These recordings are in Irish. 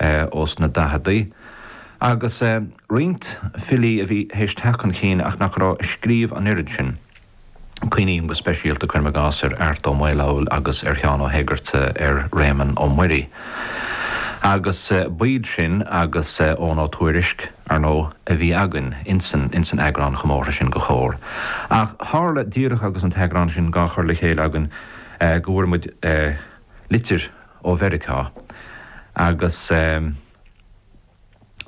ó sna daicheadaí, agus roinnt filí a bhí théis teacht chun cinn ach nach raibh ag scríobh an oiread sin. Cuimhním go speisialta, cuirim i gcás, ar Art Ó Maolfabhail agus ar Sheán Ó hÉigearta, ar Réamonn Ó Muirí, agus b'iad sin agus Eoghan Ó Tuairisc, ar ndóigh, a bhí againn ins an eagrán chomórtha sin de Chomhar. Ach tharla, díreach agus an t-eagrán sin dhá chur le chéile againn, go bhfuair muid litir, ó Mheiriceá agus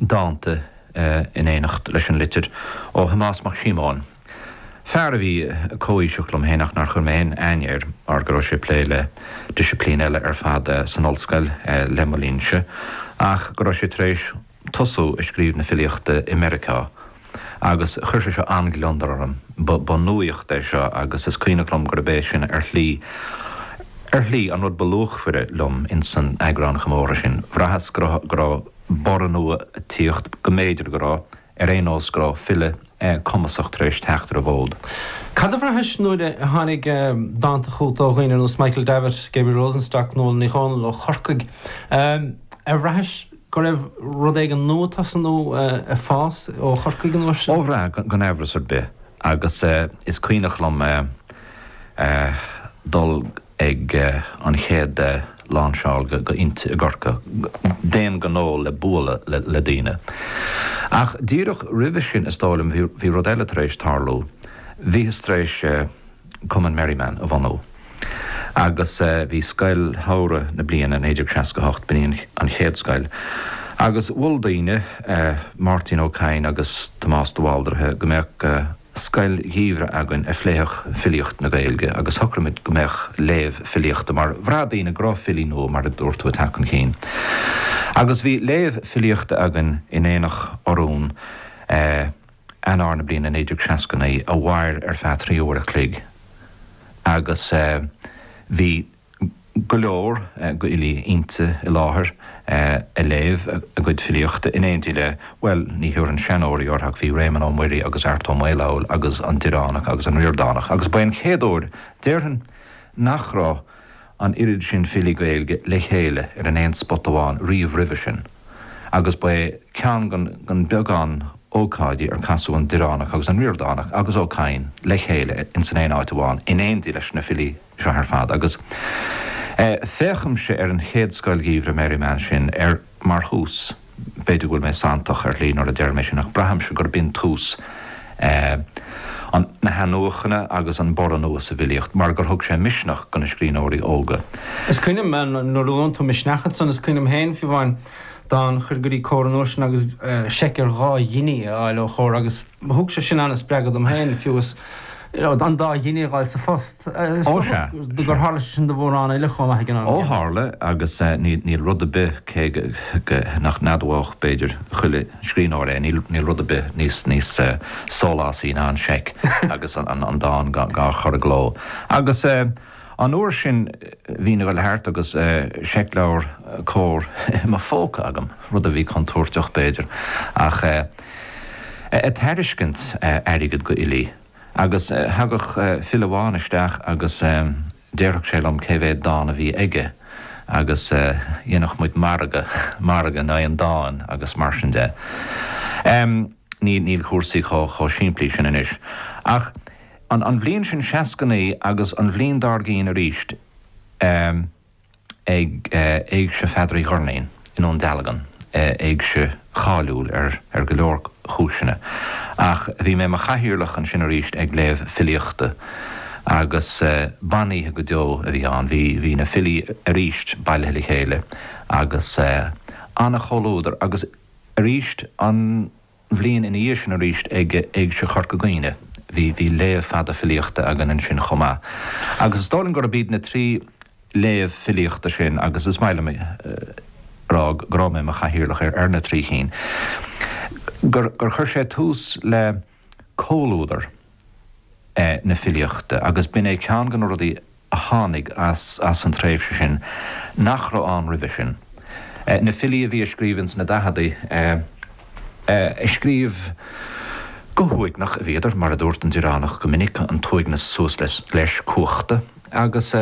dánta in éineacht leis an litir ó Thomás Mac Síomóin, fear a bhí comhaoiseach liom féin ach nár chuir mé aon aithne air mar go raibh sé ag plé le disciplín eile ar fad san ollscoil le mo linnse ach go raibh sé tar éis tosú ag scríobh na filíochta i Meiriceá agus chuir sé seo an-gliondar orm. Ba nuaíocht é seo agus is cuimhneach liom gurb é sin ar shlí ar shlí an rud ba luachmhaire liom ins an eagrán comórtha sin. Bhraitheas go raibh go raibh borradh nua ag tíocht, go mb'fhéidir go raibh, ar aon nós go raibh file cumasach tar éis teacht ar an bhfód. Cad a bhraithis nuair a tháinig dánta chugat ó dhaoine ar nós Michael Davitt, Gabriel Rosenstock, Nuala Ní Dhomhnaill ó Chorcaigh? Ar bhraithis go raibh rud éigin nua tosaithe nó ag fás ó Chorcaigh an uair sin. Ó bhraith, gan aimhreas ar bith, agus is cuimhneach liom dul ag an chéad lánseáil de Innti i gCorcaigh d'aon ghnó le bualadh le daoine. Ach díreach roimhe sin, is dóigh liom, bhí rud eile tar éis tarlú. Bhíothas tar éis. Cumann Merriman a bhunú agus bhí scoil shamhradh na bliana 1968 b'in an chéad scoil agus mhol daoine, Máirtín Ó Cadhain agus Tomás de Bháldraithe, go mbeadh scoil gheimhridh againn a phléifeadh filíocht na Gaeilge agus shocraigh muid go mbeadh léamh filíochta mar bhraith daoine go raibh filí nua, mar a dúirt tú, ag teacht chun cinn. Agus bhí léamh filíochta againn in Aonach Urmhumhan. Eanáir na bliana 1969 a mhair ar feadh trí uair a chloig agus bhí go leor d'fhilí Innti i láthair a léamh a gcuid filíochta in éindí le, bhuel, ní thabharfainn 'seanóirí' orthu ach bhí Réamonn Ó Muirí agus Art Ó Maolfabhail agus an Direánach agus an Ríordánach agus ba é an chéad uair, déarfainn, nach raibh an oiread sin filí Gaeilge le chéile ar an aon spota amháin riamh roimhe sin. agus ba é ceann den bheagán ócáidí ar casadh an Direánach agus an Ríordánach agus Ó Cadhain le chéile insan aon áit amháin in éindí leis na filí seo ar fad agus féachaimse ar an chéad Scoil Gheimhridh Merriman sin ar mar thús, b'fhéidir go bhfuil mé santach ar shlí nuair a deirim é sin ach braithimse gurb shin tús ea an, na hathnuachaintí agus an borradh nua sa bhfilíocht mar gur thug sé misneach do na scríbhneoirí óga. Is cuimhin liom, nuair a luann tú misneach ansan, is cuimhin liom féin, fiú amháin, dán a chur go dtí Comhar an uair sin agus seic ar dhá ghiní a fháil ó Chomhar agus thug sé sin an-spreagadh dom féin, fiú is, you know, an dá ghiní a dh'fháil sa phost. Ó sea. Gur tharla sé sin do mhórán eile chomh maith ag an am céanna. Ó tharla, agus níl rud ar bith, cé nach n-admhódh b'fhéidir chuile scríbhneoir é, níl rud ar bith níos sólásaí ná an seic agus an dán dhá chur i gcló. Agus an uair sin bhínn ag dul thart agus seicleabhar Comhar i mo phóca agam, rud a bhí contúirteach b'fhéidir, ach ag tairiscint airgid go Agus thagadh file amháin isteach agus déarfadh sé liom cé mhéad dán a bhí aige agus dhéanadh muid margadh, margadh in aghaidh an dáin agus mar sin de. Níl cúrsaí chomh simplí sin anois. Ach an bhliain sin seasca naoi agus an bhliain dár gcinn arís, ag Éigse Pheadair Uí Dhoirnín i nDún Dealgan, éigse cháiliúil ar go leor cúiseanna, ach bhí mé i mo chathaoirleach ansin arís ag léamh filíochta agus b'in oíche go deo a bhí ann. Bhí na filí arís bailithe le chéile agus an-chomhluadar agus arís an. bhliain ina dhiaidh sin arís ag Éigse Chorca Dhuibhne. Bhí léamh fada filíochta againn ansin chomh maith agus is dóigh liom gurb iad na trí léamh filíochta sin agus is maith liom a rá go raibh mé i mo chathaoirleach ar na trí chinn gur chuir sé tús le comhluadar na filíochta agus b'in é ceann de na rudaí a a tháinig as as an tréimhse sin nach raibh ann roimhe sin. Na filí a bhí ag scríobh ins na daicheadaí ag scríobh go huaigneach a bhíodar, mar a dúirt an Direánach go minic, an t-uaigneas suas leis cuachta, agus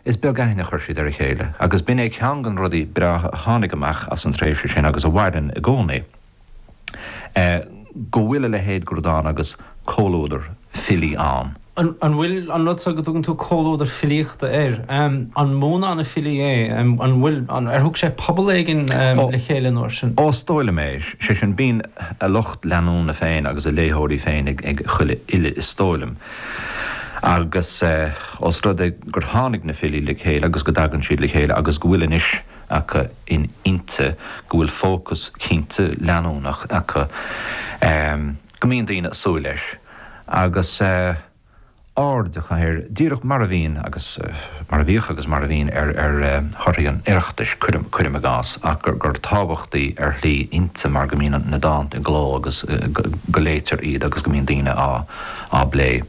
is beag aithne a chuir siad ar a chéile. Agus b'in é ceann de na rudaí breátha a tháinig amach as an tréimhse sin agus a mhaireann i gcónaí. go bhfuil a leithéid de rud ann agus comhluadar filí ann. An bhfuil an rud seo go dtugann tú comhluadar filíochta air, an mó ná na filí é, an bhfuil, ar thug sé pobal éigin le chéile an uair sin? Ó is dóigh liom é, sé sin bíonn a lucht leanúna féin agus a léitheoirí féin ag chuile fhile is dóigh liom agus os rud é gur tháinig na filí le chéile agus go dtagann siad le chéile agus go bhfuil anois acu in Innti go bhfuil fócas cinnte leanúnach acu go mbíonn daoine ag súil leis agus aird acu air, díreach mar a bhíonn agus mar a bhíodh agus mar a bhíonn ar thorthaí an Oireachtais, cuirim i gcás, ach gur tábhachtaí ar shlí Innti mar go mbíonn na dánta i gcló agus go léitear iad agus go mbíonn daoine á bplé.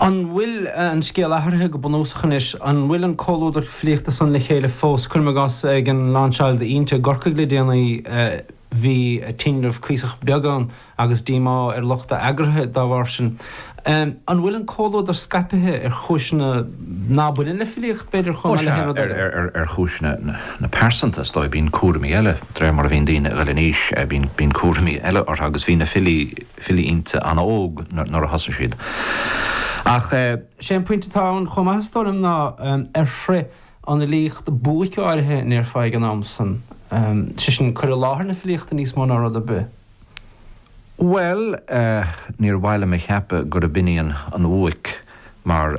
An bhfuil an scéal athraithe go bunúsach anois? An bhfuil an comhluadar filíochta san le chéile fós? Cuirim i gcás, ag an lainseáil d'Innti i gCorcaigh le déanaí, bhí tinreamh cuíosach beag ann agus díomá ar lucht a eagraithe dá bharr sin. An bhfuil an comhluadar scaipithe ar chúiseanna ná baineann le filíocht, b'fhéidir, chomh maith le haon rud eile? Ó sea, ar chúiseanna na pearsanta, is dóigh. Bíonn cúraimí eile, de réir mar a bhíonn daoine ag dul in aois, bíonn cúraimí eile orthu agus bhí na filí, filí Innti an-óg nuair a thosaigh siad. Ach sé an pointe atá ann chomh maith is dóigh liom ná ar shroich an fhilíocht buaic áirithe an ndéarfá ag an am san, sé sin cur i láthair na filíochta níos mó ná rud ar bith. Bhuel níor mhaith liom a cheapadh gurb in í an bhuaic mar.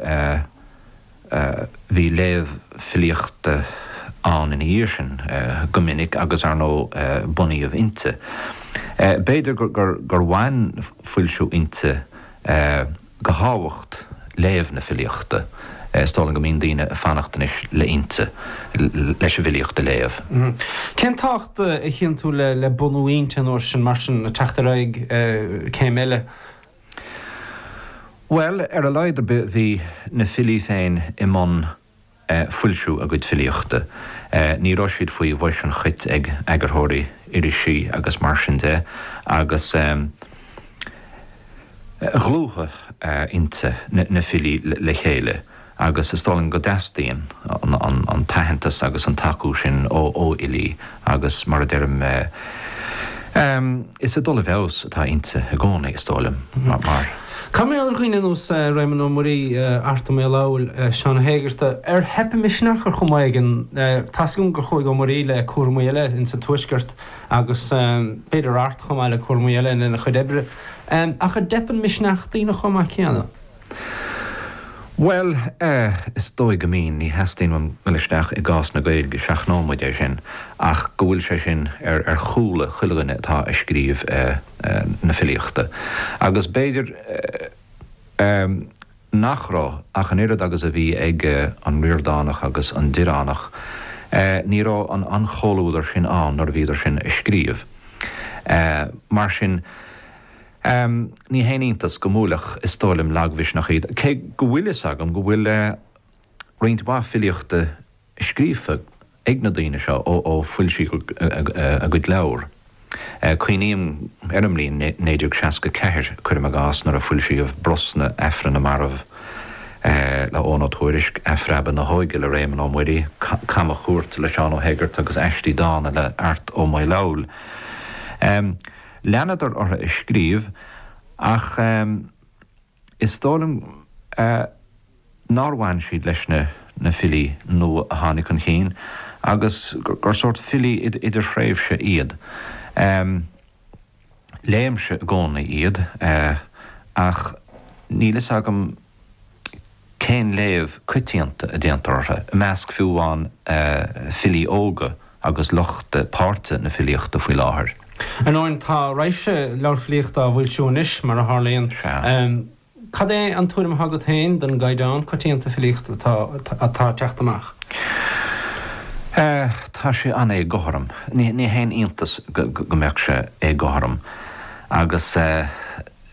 Bhí léamh filíochta ann ina dhiaidh sin go minic agus, ar ndóigh, bunaíodh Innti. B'fhéidir gur bhain foilsiú Innti de thábhacht léamh na filíochta, is dóigh liom go mbíonn daoine ag fanacht anois le Innti leis an bhfilíocht a léamh. Cén tábhacht a chíonn tú le bunú Innti an uair sin, mar sin, le teacht ar aghaidh céim eile? Bhuel, ar a laghad ar bith bhí na filí féin i mbun foilsiú a gcuid filíochta, ní raibh siad faoi bhois an chait ag eagarthóirí irisí agus mar sin de agus dhlúthaigh Innti na filí le chéile. agus is dóigh liom go dteastaíonn an t-aitheantas agus an tacú sin ó fhilí agus, mar a deirim, is ag dul i bhfeabhas atá Innti i gcónaí, is dóigh liom, mar. Cad mar gheall ar dhaoine ar nós Réamonn Ó Muirí, Art Ó Maolfabhail, Seán Ó hÉigeartaigh, ar theip a misneach ar chuma éigin. Tá's agam gur chuaigh Ó Muirí le cúraimí eile ins an Tuaisceart agus b'fhéidir Art chomh maith le cúraimí eile lena chuid oibre, ach an dteipeann misneach daoine chomh maith céanna? Bhuel eh, is dóigh go mbíonn, ní theastaíonn uaim dul isteach i gcás na Gaeilge, seachnóidh muid é sin, ach go bhfuil sé sin ar, ar chúla chuile dhuine atá a' scríobh eh, na filíochta agus b'fhéidir eh, eh nach raibh ach an oiread agus a bhí ag eh an Ríordánach agus an Direánach eh ní raibh an, an chomhluadar sin ann nuair a bhíodar sin a' scríobh eh mar sin. Ám, ní haon iontas go mbuailfeadh Is dóigh liom lagmhisneach iad, cé go bhfuil fhios agam go bhfuil roinnt mhaith filíochta scríofa ag na daoine seo ó foilsíodh a gcuid leabhar. Cuimhním ar an mbliain 1964, cuirim i gcás, nuair a foilsíodh Brosna, Aifreann na Marbh le Eoghan Ó Tuairisc, Athphreabadh na hÓige le Réamonn Ó Muireadhaigh, Camachuairt le Seán Ó hEigeartaigh agus Aistí Dána le Art Ó Maolfabhail. Leanadar orthu ag scríobh ach is dóigh liom nár bhain siad leis na filí nua a tháinig chun cinn agus gur sórt filí idirthréimhse iad. Léimse i gcónaí iad ach níl fhios agam cén léamh coitianta a déantar orthu, i measc fiú amháin filí óga agus lucht páirte na filíochta faoi láthair? Anois, tá raidhse leabhar filíochta á bhfoilsiú anois, mar a tharlaíonn. Cad é an tuairim atá agat féin den gcaighdeán coitianta filíochta atá ag teacht amach? Tá sé an-éagothrom. Ní haon iontas go mbeadh sé éagothrom agus.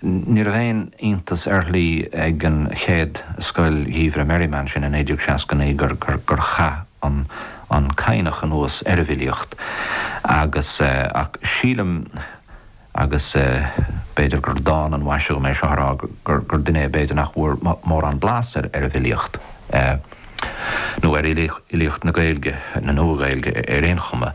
Ní aon iontas ar shlí ag an chéad Scoil Gheimhridh Merriman sin i 1969 gur chaith an Cadhnach anuas ar an bhfilíocht agus, ach sílim, agus b'fhéidir gur dána an mhaise dhom é seo a rá, gur duine é b'fhéidir nach bhfuair mórán blas ar an bhfilíocht nó ar fhilíocht na Gaeilge, na Nua-Ghaeilge, ar aon chuma.